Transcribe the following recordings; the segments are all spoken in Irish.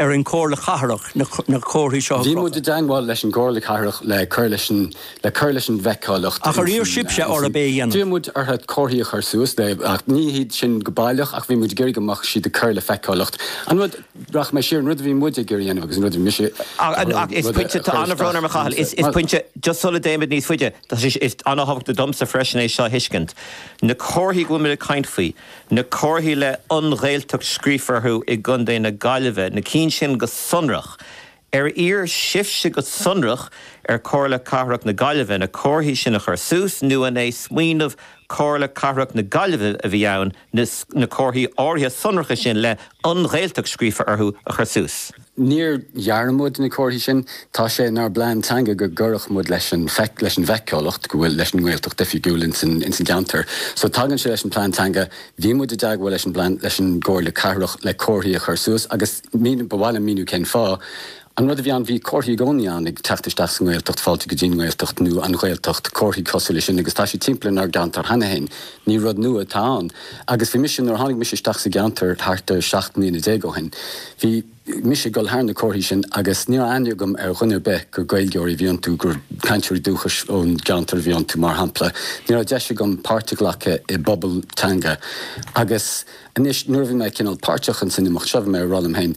ar an Chomhairle Chathrach na comharthaí seo a chrochadh. Bhí muid i dteangmháil leis an gComhairle Chathrach le cur leis an le cur leis an bhfeiceálacht Ach ar iarr sibhse ab é a dhéanamh? D'iarr muid orthu comharthaí a chur suas le e ní hiad sin go baileach ach bhí muid ag iarraidh go mbeadh siad ag cur le feiceálacht an rud rachaidh mé siar an rud a bhí muide ag iarraidh a dhéanamh agus an rud a bhí mise ag iarraidh Ach rud tá an-bhrón orm a Chathail is pointe just sula dtéimid níos faide is an-tábhachtach domsa freisin é seo a thuiscint na comharthaí go bhfuil muid ag caint faoi Na comharthaí le 'An Ghaeltacht' scríofa orthu i gContae na Gaillimhe, na cinn sin go sonrach. Ar iarr sibhse go sonrach ar Chomhairle Cathrach na Gaillimhe na comharthaí sin a chur suas nó an é smaoineamh Chomhairle Cathrach na Gaillimhe a bhí ann na comharthaí áirithe sonracha sin le 'An Ghaeltacht' scríofa orthu a chur suas? Níor dhear muid na comharthaí sin. Tá sé inár bplean teanga go gcuirfeadh muid leis an leis an bhfeiceálacht go bhfuil leis an nGaeltacht oifigiúil ins an ins an gceantar. So tagann sé leis an plean teanga. Bhí muid i dteagmháil leis an bplean leis an gcomhairle cathrach le comharthaí a chur suas agus míniú ba mhaith liom míniú cén fáth. An rud a bhí ann, bhí comharthaí i gcónaí ann ag teacht isteach sa nGaeltacht, fáilte go dtí'n nGaeltacht nó an Ghaeltacht, comharthaí cosúil le sin agus tá siad timpeall inár gceantar cheana féin. Ní rud nua atá ann agus bhí mise, nuair a tháinig mise isteach sa gceantar thart ar seacht mbliana déag ó shin, bhí mise ag dul thar na comharthaí sin agus ní raibh aithne agam ar dhuine ar bith gur Gaeilgeoirí a bhí iontu, gur cainteoirí dúchais ón gceantar a bhí iontu, mar shampla. Ní raibh deis agam páirt a ghlacadh i bpobal teanga agus anois nuair a bhí mé cineál páirteach in san imeacht seo, bhí mé ag rá liom féin,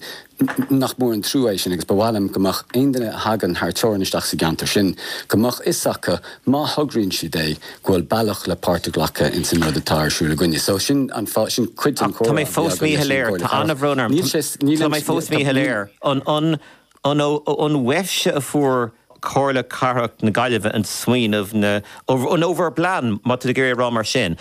Nach mór an trua é sin agus ba mhaith liom go mbeadh aon duine a thagann thar teorainn isteach sa gceantar sin, go mbeadh 'fhios acu, má thograíonn siad é, go bhfuil bealach le páirt a ghlacadh ins an rud atá ar siúl againne. So sin an fáth, sin cuid den comhrá a bhí againn leis an Chomhairle Cathrach. Tá mé fós míshoiléir, tá an-bhrón orm, Níl sé, níl aon, tá, níl. tá mé fós míshoiléir. An, an, an ó, ó, uaibhse a fuair. Comhairle Cathrach na Gaillimhe an smaoineamh na, nó bhur bplean, má tá tú ag iarraidh a rá mar sin.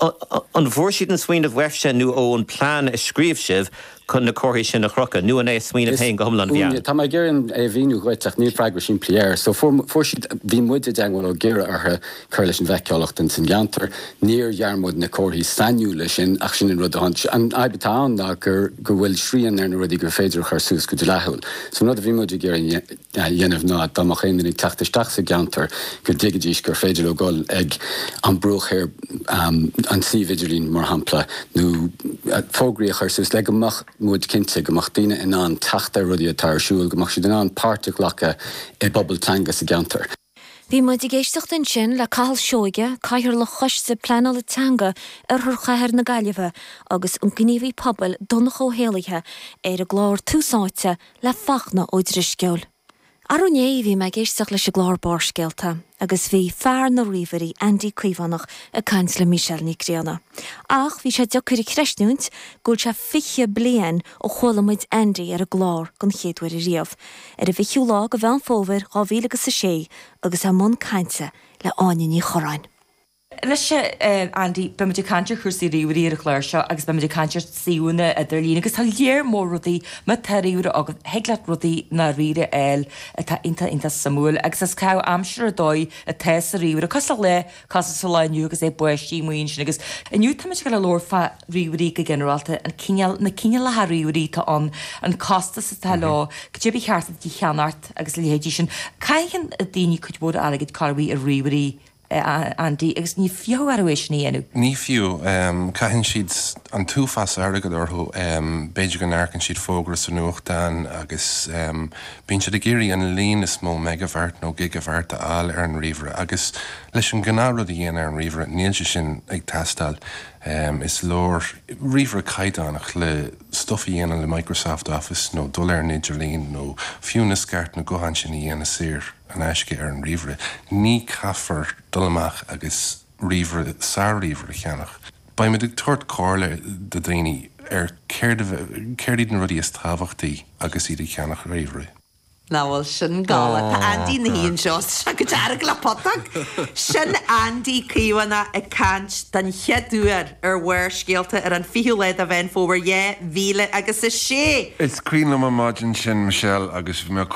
An bhfuair siad an smaoineamh uaibhse nó ón plean a scríobh sibh chun na comharthaí sin a chrochadh, nó an é a smaoineamh féin go hiomlán a bhí ann? tá mé ag iarraidh é a mhíniú dhuit ach níl freagra simplí air. So, fuair, fuair siad, bhí muide i dteagmháil ag iarraidh orthu cur leis an bhfeiceálacht ins an gceantar, níor dhear muid na comharthaí sainiúla sin ach sin an rud a tháinig sé, an fhadhb atá ann ná gur, go bhfuil srian ar na rudaí gur féidir a chur suas go dleathúil. So an rud a bhí muid ag iarraidh a, dhéanamh ná dá mbeadh aon duine ag teacht isteach sa gceantar go dtuigfidís gur féidir leo dul ag an Bruach Thoir, an suíomh idirlín mar shampla, nó fógraí a chur suas le go mbeadh muid cinnte go mbeadh daoine in ann teacht ar rudaí atá ar siúl, go mbeadh siad in ann páirt a ghlacadh i bpobal teanga sa gceantar. Bhí muid ag éisteacht ansin le Cathal Seoige, Cathaoirleach Choiste Pleanála Teanga Oirthear Chathair na Gaillimhe agus an gníomhaí pobail Donncha Ó hÉallaithe ar an gclár Tús Áite le Fachtna Ó Drisceoil. Arú inné bhí mé ag éisteacht leis an gclár Barrscéalta agus bhí fear na ríomhairí Andy Caomhánach ag caint le Michelle Nic Grianna. Ach bhí sé deacair a chreistiúint go bhfuil sé fiche bliain ó chuala muid Andy ar an gclár den chéad uair ariamh. ar an bhfichiú lá de Mheán Fómhair dhá mhíle agus a sé agus é i mbun cainte le hÁine Ní Churráin. Anois a Andy, beimid ag caint ar chúrsaí ríomhairí ar an chlár seo agus beimid ag caint ar shuíomhanna idirlín agus tá léar mór rudaí, má tá ríomhaire agat, thig leat rudaí i ndáiríre a fháil atá iontach iontach suimiúil agus is caitheamh aimsire ar dóigh atá sa ríomhaire, cosúil le. Gasúr sa lá inniu agus é bogaistí i mbun sin agus inniu táimid ag labhairt fá ríomhairí go ginearálta, an cineál, na cineálacha ríomhairí atá ann, an costas atá leo, goidé ba cheart duit a cheannacht agus a leithéidí sin. Caitheann daoine cuid mhór airgid, cá bith, ar ríomhairí, a Andy, agus ní fiachadh orthu é sin a dhéanamh. Ní fiú. Caitheann siad an t-uafás airgid orthu. B'fhéidir go n-amharcann siad fógra sa nuachtán agus Bíonn siad ag iarraidh an líon is mó megahertz nó gigahertz a fháil ar an ríomhaire agus leis an ngnáth rud a dhéanamh ar an ríomhaire níl sé sin ag teastáil. Is leor ríomhaire caighdeánach le stuff a dhéanamh le Microsoft Office nó dul ar an idirlíon nó fiú na scairteanna gutháin sin a dhéanamh saor in aisce ar an ríomhaire. Ní caithfear dul amach agus ríomhaire, sár-ríomhaire a cheannach. Beidh mé ag tabhairt comhairle do dhaoine ar céard a, céard iad na rudaí is tábhachtaí agus iad ag ceannach ríomhairí. Nach bhfuil sin go hard! Tá Andy ina shuí anseo, tá sé go dearg le putóg! Sin Andy Caomhánach ag caint den chéad uair ar Bharrscéalta ar an 20ú lá de Mheán Fómhair, dhá mhíle agus a sé! Is cuimhin liom an maidin sin Michelle agus bhí mé